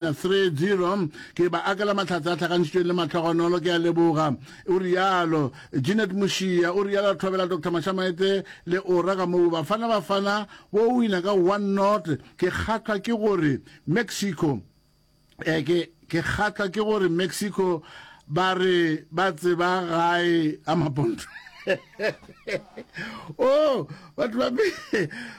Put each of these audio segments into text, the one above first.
30 ke ba akela mahlatse a tlhakantšitšweng le matlhogonolo ke a leboga o rialo Jeanette Mošia o rialo a thobela Dr Mashamaete le ora ka moo Bafana Bafana wo o wina ka 1 not ke kgatlhwa ke gore Mexico eh, ke ke kgatlhwa ke gore Mexico ba re ba tseba gae a maponto oh batho ba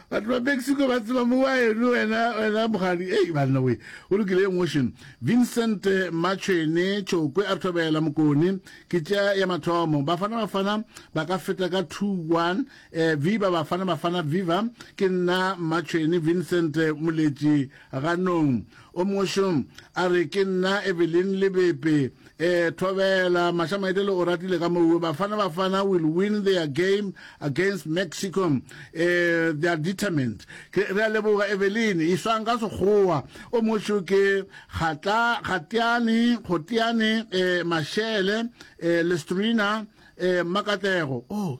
batho ba mexico ba tseba mowa eno wena wena mogadi ei banna we o lokile emotion vincent machene chokwe a thobela mokone ke tša ya mathomo bafana bafana ba ka feta ka 2-1 eh, viva bafana bafana viva ke nna machene vincent moletši ganong O mongwe šo a re, Ke nna Evelyn Lebepe. E, thobela, Mašamaedele o ratile ka mowe. Bafana Bafana will win their game against Mexico. E, they are determined. Ke, re a leboga, Evelyn. E swang ka Sekgowa. O mongwe šo ke, Kgatla, Kgateane, Kgoteane, e, Mashele, e, Lestrina, e, Mmakatlego. Oh.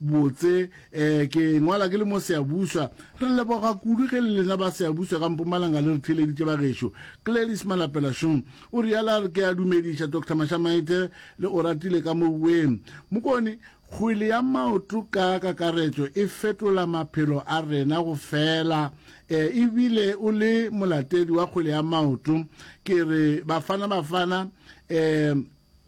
Botse, ee, ke ngwala ke le mo Seabuswa. Re leboga kudu ge le lena ba Seabuswa ka Mpumalanga le re theeleditše bagešo. Gladys Malapela Shum o realo a re ke a dumediša Doctor Mashamaite le Oratile ka mo bueng. Mokone, kgwele ya maoto ka kakaretšo e fetola maphelo a rena go fela. Ee, e bile o le molatedi wa kgwele ya maoto. Ke re Bafana Bafana, ee,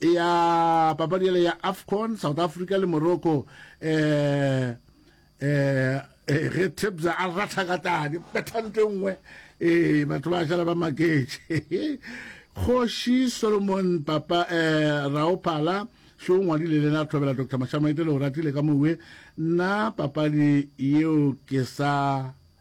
ya papadi yale ya afcon south africa le morocco um um ge tebza a ratha ka tadi bethante nngwe ee batho ba šala ba maketše kgoši solomon papa um raophala šo o ngwadile lena thobela dr mashamaite le o ratile ka mowe nna papadi yeo ke sa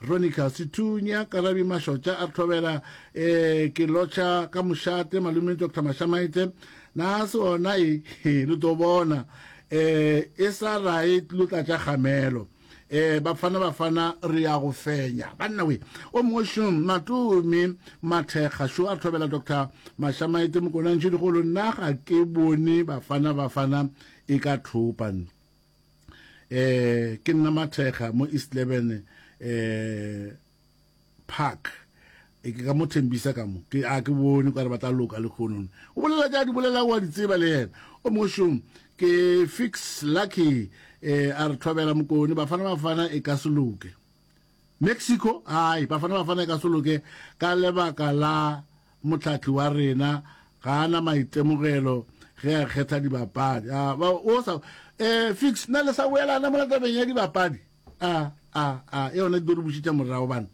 Ronica Sethunya, Karabi Mashotša a re thobela, ee, ke lotšha ka mošate, malume Doctor Mashamaite, na se ona e, he, le tlo bona, ee, e sa rae tlo tlatša kgamelo, ee, Bafana Bafana re ya go fenya, banna we, o mongwe šum, Matumi Mathekga šo a re thobela Doctor Mashamaite, Mokonantšhedikgolo, nna ga ke bone Bafana Bafana e ka thopa, eh ke nna mathekga mo east leben eh park e ke ka mo thembisa ka mo ke a ke bone kware ba tla loka le khonone o bolela ja di bolela wa di tseba le yena o moshong ke fix lucky eh a re thobela mokone bafana bafana e ka se loke Mexico, Ai, Bafana Bafana e ka se loke ka lebaka la mohlahli wa rena ga a na maitemogelo ge a kgetha dibapadi. A, ba, o sa, e, Fix, na le sa boelana mola tabeng ya dibapadi? A, a, a, e yona e tlo re bušetša morago bana.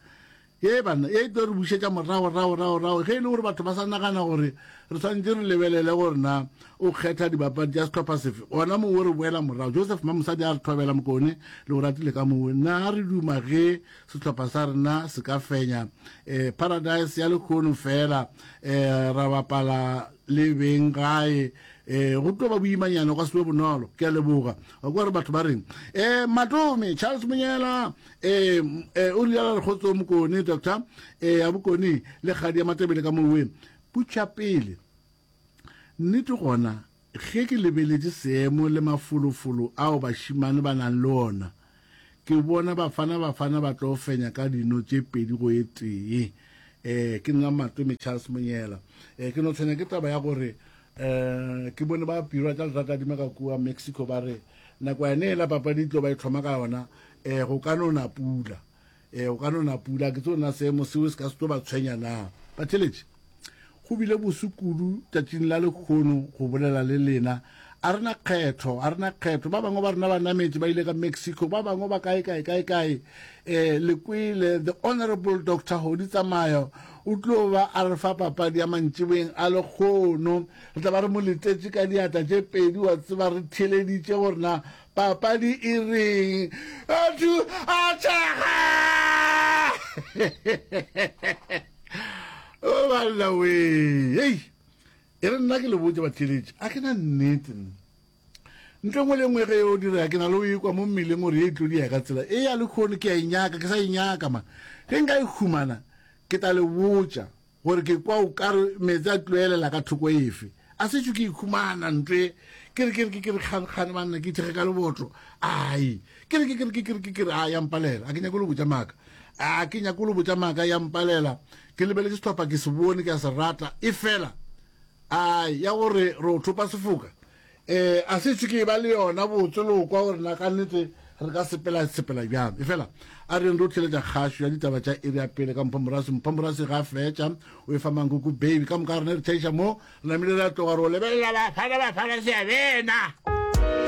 Ye bana, ye e tlo re bušetša morago, rago, rago, rago, ge e le gore batho ba sa nagana gore re swantše re lebelele gore na O kgetha dibapadi tša sehlopha sefe? Gona moo o re boela morago. Joseph Mamosadi a re thobela Mokone le Oratile ka moo. Na re duma ge sehlopha sa rena se ka fenya eh, Paradise ya lekgono fela eh, ra bapala le beng gae eh, go tlo ba boimanyana go se be bonolo. Ke a leboga. Wa kwa re batho ba reng eh, Matome Charles Monyela eh, eh, o rialo re kgotso Mokone Doctor eh, ya Bokone le kgadi ya Matebele ka moo. Putšapele. Nnete gona, ge ke lebeletše seemo le mafolofolo ao bašemane ba nago le ona, ke bona Bafana Bafana ba tlo fenya ka dino tše pedi go e tee. Ee, ke nna Matome Charles Monyela. Ee, ke no tshwenya ke taba ya gore ee, ke bone ba pirwa tša lerakadima ka kua Mexico ba re nakwana yela papadi e tlo ba e hloma ka yona ee, go ka no na pula. Eh, o ka no na pula, ke tso na seemo seo se ka se tlo ba tshwenya na? Batheletši, go bile bosu kudu tšatšing la lekgono go bolela le lena. A re na kgetho, a re na kgetho. Ba bangwe ba rena ba nametše ba ile ka Mexico, ba bangwe ba kae kae kae kae. Eh, le kwele, the honorable Doctor Hodi Tsamayo o tlo ba a re fa papadi ya mantšiboeng a lekgono. Re tla ba re mo letetše ka diatla tše pedi, wa tseba re theleditše gore na Papadi e reng? Batho a tšhaga! O oh, banna we. Hey. E re nna ke le botse batheletše a ke na nnete nna ntle ngwe le ngwe ge o dira ke na le o ekwa mo mmeleng gore e tlodi ya ka tsela e ya le kgone ke a e nyaka ke sa e nyaka ma ge nka e humana ke tla le botša Gore ke kwa o kare meetse a tlilo elela ka thoko efe. A setšo ke ikhumana ntwe ke re ke re ke re kgane kgane banna ke ithege ka lebotlo ai ke re ke ke ke ke ke re a ya mpalela a ke nyako lo botsa maka a ke nyako lo botsa maka ya mpalela ke lebeletse setlhopha ke se bone ke a se rata e fela ai ya gore re o thopa sefoka Ee, a se ise ke e ba le yona botse le go kwa gore na ka nnete re ka sepela sepela bjang. Efela a reng re o tlheletša kgašo ya ditaba tša iri ya pele ka Mphomorasi. Mphomorasi ga a fetša o e fa Mankuku Baby. Ka moka ga rena re thaiša moo, re namile re a tloga re o lebelela Bafana Bafana Seabena.